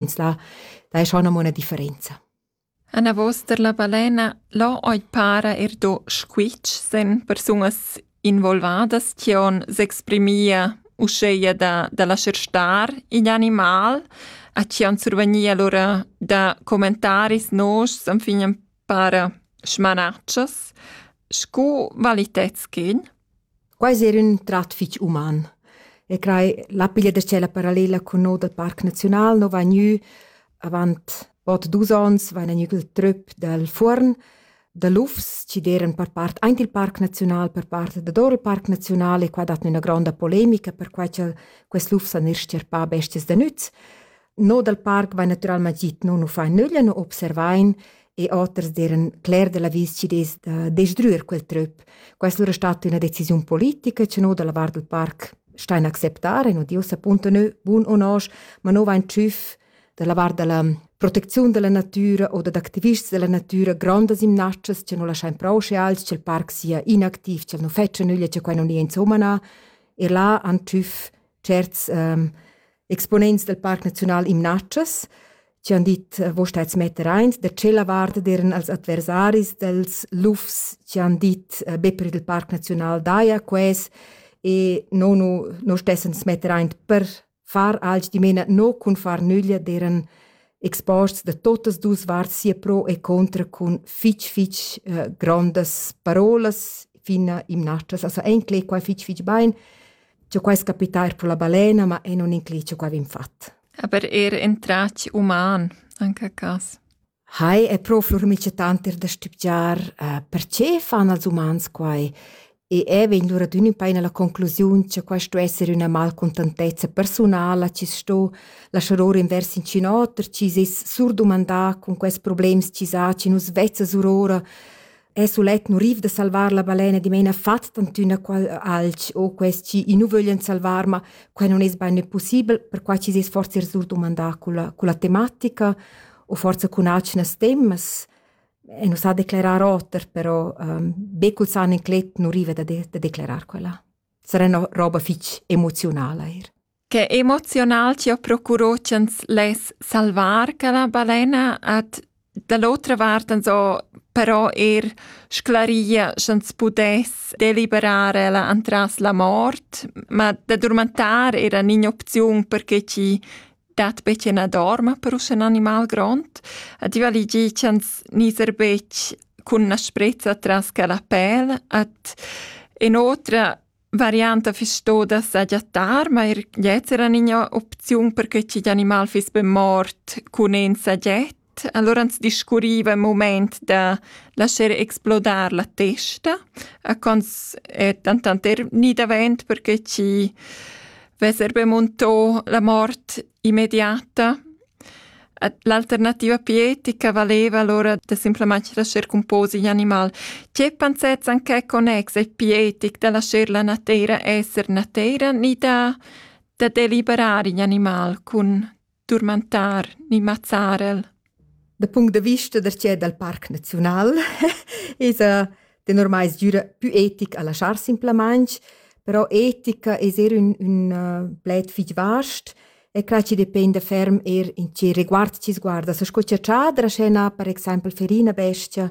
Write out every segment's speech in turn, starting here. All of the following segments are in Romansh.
ins là, da è schon amo una differenza. Anavos der la balena lo oi para er do squitsch sen persunas involvadas tion s'exprimia uscheia da, da lascer star igl animal, a cian survegnia lora da commentaris noschs am fignan para schmanatschas scu valitetschin? Quai es eir ün trat fich uman e crai la piglia da tschella parallela cun no dal Parc Naziunal no vain gnü avant bod dus ons vaina gnü il tröp dal Fuorn da lufs chi d'eiran per part aint il Parc Naziunal, per part dador il Parc Naziunal e qua dat gnü üna gronda polemica perquai cha'l quels lufs han eir stierpà bestias da nüz. No dal parc vain natüralmaing git no nu fain nüglia, nu observain e oters d'eiran cler da l'avis chi'd es da desdrüer quel tröp. Questa lura è stata üna decisiun politica cha no da la vart dal parc stain acceptar e no di ussa punto nö bun o nosch, ma no vain tschüf da la vart da la protecziun da la natüra o dad activists da la natüra grondas imnatschas cha no laschain prouschir als cha'l parc sia inactiv, cha'l nu fetscha nüglia, cha quai non nia insumma na. E là han tschüf tscherts ehm exponents del Parc Naziunal Imnatschas, ci han dit, wo stats metter eins, da cella vart deren als adversaris dels lufs ci han dit, be per il Parc Naziunal daia ques e no nu no stessen smetter eint per far alch di mena no cun far nüglia deren exports de totas dus varts sia pro e contra cun fitch fitch uh, grandes parolas fina imnatschas, also enclé qua fitch fitch bein Giò quai es capità eir pro la balena, ma e non inclì ciò ch'avin fat. Aber er in trac uman, anche a cas. Hai è pro flormicetanter da stübgiar uh, perché fan als umans quai e è vegn lura d'ün in paina la conclusiun che quai sto esser üna malcontentezza personala chi sto lasciar or invers in cinoter chi s'es surdumandà con quels problems chi sa chi nus vezza surora e sulet nuriv da salvar la balena dimena fat tantüna qual alch o quest chi i nu vöglian salvar, ma quai non es bain possibel, perquai chi s'es forsa rsut dumandà culla, culla tematica o forsa cun atgnas temas. E nu s'ha declerar oter, però ehm, be cul san inclet nu riva da de da declerar quella. Sarà üna roba fich emoziunala eir. Che emoziunal chi ho procurò ch'ans less salvar quella balena ed da l'otra vart ans ho però eir sclaria sch'ans pudess deliberar ella antras la mort, ma da durmentar era ün'opziun perche chi dat be chi na dorma per usche ün animal grond ed i vali dir ch'ans gniser betg cun na sprezza tras quella pel ed inoltre varianta fiss stoda sagiattar, ma er gliez era ina opziun per che ch'igl animal fiss be mort cun in sagiet. Allora ans discurriva il moment da lascher explodar la testa, a cons è dentant er ni davent perché chi vesser be montò la mort immediata L'alternativa pietica valeva allora da simplamain lascher composer in animal. Tge pensets en quai connex è pietic da lascher la nateira esser nateira ni da, da deliberar in animal cun turmentar ni mazzar el? Da punct da vista da tgè dal Parc Naziunal esa tenor mai es gnüra pü etic a laschar simplamaing, però etica es eir ün ün pled fich vast e cra chi dependa ferm eir in che reguard chi sguarda. So sco cha Tschadra sche na per exaimpel fer ina bestia,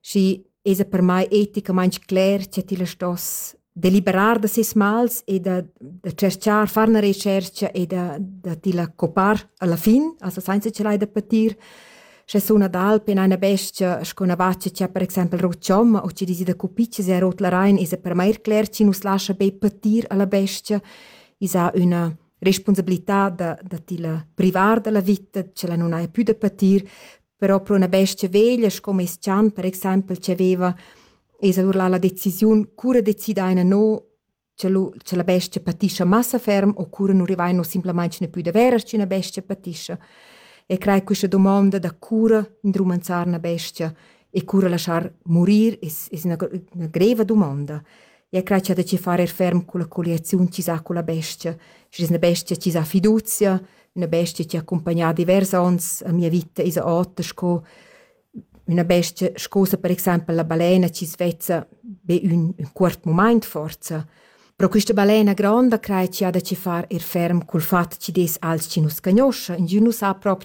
schi esa per mai eticamaing cler cha tilla stoss deliberar da ses mals e da, da tscherchar, far una recherca e da, da ti la copar alla fin, also senza ce l'hai da patir. Sche suna d'alp in una bestia, sco una vaccia c'è per esempio rocciomma o ci dici da cupiccia se rot la rain, isa per mai cler ci nus lascia be patir alla bestia, isa una responsabilità da, da ti la privar dalla vita, ce la non hai più da patir, però pro una bestia veglia sco meis chan per exaimpel chi aveva es allura la decisiun cura decidaina no cha lu cha la bestia patischa massa ferm o cura nu rivaino simplamaing ne pü daveras ch'üna bestia patischa e crei quista domonda da cura indrumanzar üna bestia e cura lasciar murir es es üna üna greva domonda. E crei cha da chi far er ferm culla colliaziun chi s'ha culla bestia, schi es üna bestia chi s'ha fiduzia, üna bestia chi ha accumpagnà divers ons a mia vita esa ota sco üna bestia scusa per exaimpel la balena chi svezza be ün ün cuort mumaint forsa però quista balena gronda crai chi ha da chi far ir ferm cul fat chi dess als chi nu scagnoscha ingün nu sa propi